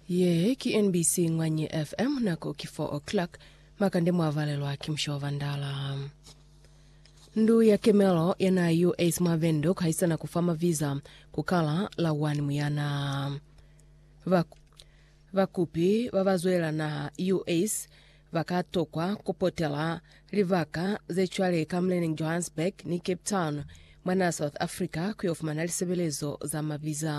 Ye ki NBC Ngwanyi FM, nako ki 4 o'clock, makande mwa valelwa ki musha wa Vandala. Ndu ya kemelo ya na US mwa Vendo kuhaisana ku fa maviza ku kala la 1 Muyana. Ba, bakupi ba ba zwela na US Ba ka tokwa ku potela libaka ze cwale ka muleneñi Johannesburg ni Cape Town mwa naa South Africa ku yo fumana lisebelezo za mabiza.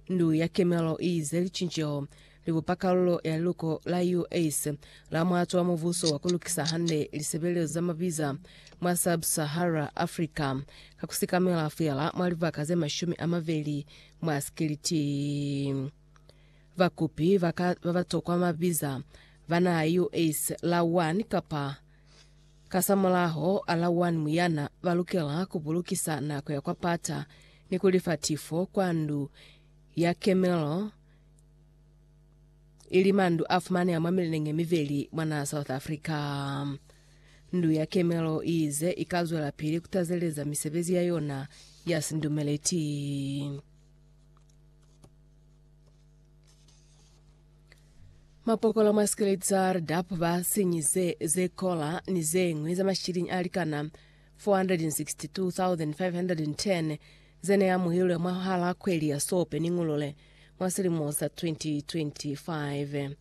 Ndu ya Kemelo i ize licinceho li bupa kalulo ya liluko la US la muato wa mubuso wa ku lukisa hande lisebelezo za mabiza mwa Sub-Sahara Africa ka ku sikamela feela mwa libaka ze mashumi a mabeli mwa sikiliti. Bakupi ba ka ba ba tokwa mabiza ba na US la 1 kapa kasamulaho a la 1 muyana ba lukela ku bulukisa nako ya kwa pata ni ku lifa tifo kwa ndu ya kemelo ili mandu a fumaneha mwa mileneng ye mibeli mwa naha South Africa. Ndu ya kemelo i ize i ka zwela pili ku tazeleza misebezi ya yona ya sindumeleti. Mapokolo mwa Skelet Tsar Dap ba sinyize ze kola ni ze ñwi za mashilinyi a likana 462,510 ze ne amuhilwe mwa hala kweli ya Sope ni Ngulule mwa silimo sa 2025.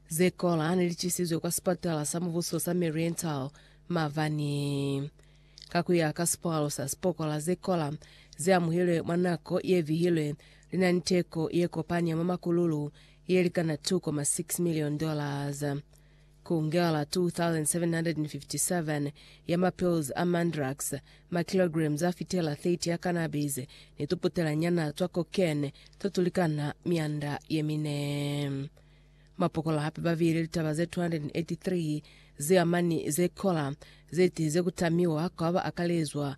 Ze kola ne li cisizwe kwa sipatala sa mubuso sa Mariental mabani. Ka ku ya ka sipalo sa sipokola ze kola ze amuhilwe mwa nako ye vihilwe, li na ni teko ye kopani ya mwa makululu ye likana 2.6 milioni dollars. Ku ngela 2,757 ya mapills a mandrax, makilograms a fitela 30 ya cannabis, ni tuputelanyana twa cocaine to tu likana mianda ye mine. Mapokola hape ba viile litaba ze 283 ze amani ze kola ze tiize ku tamiwa kwa ba akalezwa